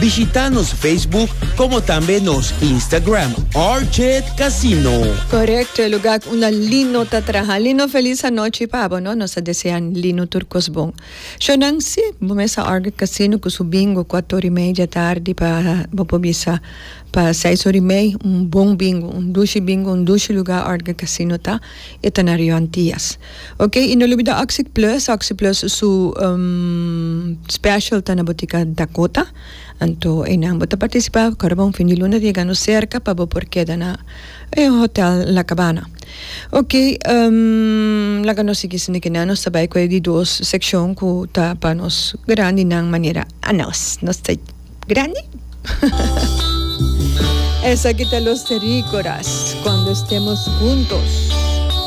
Bishita nos Facebook como tambe nos Instagram Orchid Casino. Correcto, e lugar unda Lino ta traha. Lino feliz anochi pa bo no. Nos ta desea Lino tur cos bon. Shonan, si, bo mesa Orchid Casino cu su bingo cuatro ora y media tardi pa bo por bisa pa seis ora y mei. Un bon bingo, un dushi bingo, un dushi lugar Orchid Casino ta. E ta na Rio Antillas. Ok y no lubida oxic plus, oxic plus su special ta na botica Dakota anto eynan bo ta participa ora bon fin di luna ta yega nos cerca pa bo por keda na e hotel la cabana ok laga nos sigui esende kinan nos ta bay cu e di dos seccion cu ta pa nos grandinan manera anos nos ta grandi esaki ta los tericoras cuando estemos juntos.